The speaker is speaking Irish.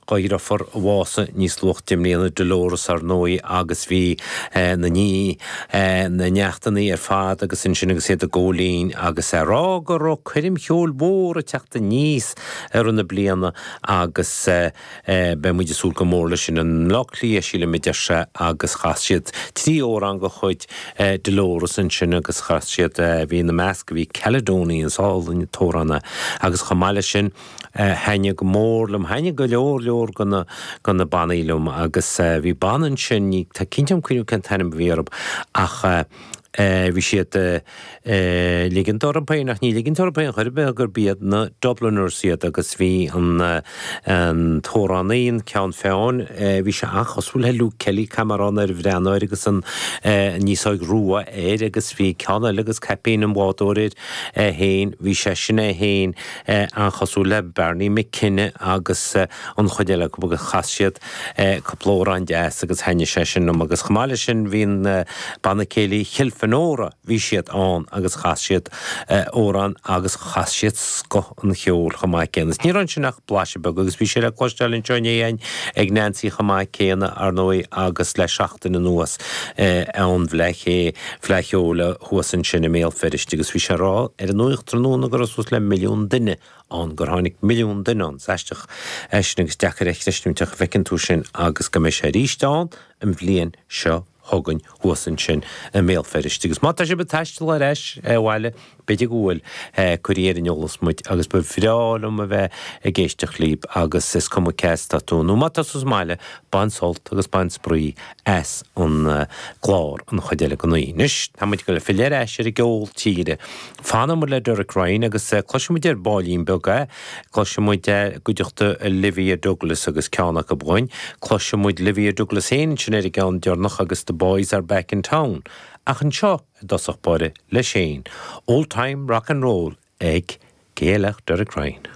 dheirfiúr a bhásaigh níos luaithe i mbliana, Dolores, ar ndóigh, agus bhí na ní, na neachtannaí ar fad agus ansin agus iad ag gabháil fhoinn agus ag rá go raibh coirm cheoil mhór ag teacht aníos i rith na bliana agus beidh muid ag súil go mór leis sin i mBleá Cliath, sílim, a deir sé agus chas siad trí amhrán de chuid Dolores ansin agus chas siad, bhí ina measc, bhí Caledonia, is álainn an t-amhrán é agus chomh maith leis sin. thaitnigh go mór liom, thaitnigh go leor leor de na bannaí liom agus bhí banna ansin, ní cinnte agam cuireadh cén t-ainm a bhí orthu ach bhí siad ag ligint orthu féin, ach ní ligint orthu féin chor ar bith, gurb iad na Dubliners iad agus bhí an t-amhránaí, an ceann feadhain, bhí sé an-chosúil le Luke Kelly, caithfidh mé a rá, ag breathnú air agus an fhéasóg rua air agus bhí ceann eile agus caipín an bhádóir air féin, bhí sé sin é féin. an-chosúil le Barney McKenna agus an chuid eile acu agus chas siad cúpla amhrán deas agus thaitnigh sé sin liom agus chomh maith leis sin bhí an Banna Céilí Kilfenora, bhí siad ann agus chas siad amhrán agus chas siad scoth an cheoil chomh maith céanna. Ní raibh ansin ach blaiseadh beag agus bhí sé le cloisteáil anseo inné a'inn ag Neansaí chomh maith céanna, ar ndóigh, agus le seachtain anuas ón bhFleadh Cheoil. Fleadh Cheoil thuas ansin i mBéal Feirste agus bhí sé ag rá ar an nuacht tráthnóna go raibh suas le milliún duine ann, gur tháinig milliún duine ann. Is aisteach é sin agus deacair a chreistiúint ach feiceann tú sin agus go mbeidh sé arís ann an bhliain seo chugainn thuas ansin i mBéal Feirste agus má tá sibh ag taisteal ar ais abhaile B'fhéidir go bhfuil. Cuirigí ar an eolas muid agus ba bhreá liom a bheith ag éisteacht libh agus is cuma cé atá tú nó má tá tú sa mbaile, bain sult agus bain spraoi as an gclár an chuid eile den oíche. Anois, tá muid ag gabháil ag filleadh ar ais ar an gceol tíre. Fanamar le Derek Ryan agus cloisfidh muid ar baillín beag é. Cloisfidh muid é i gcuideachta Olivia Douglas agus ceann acu amháin. Cloisfidh muid Olivia Douglas féin ansin ar an gceann deireanach agus The Boys Are Back in Town. Ach anseo. i dtosach báire leis féin, Old Time Rock and Roll ag, cé eile ach Derek Ryan.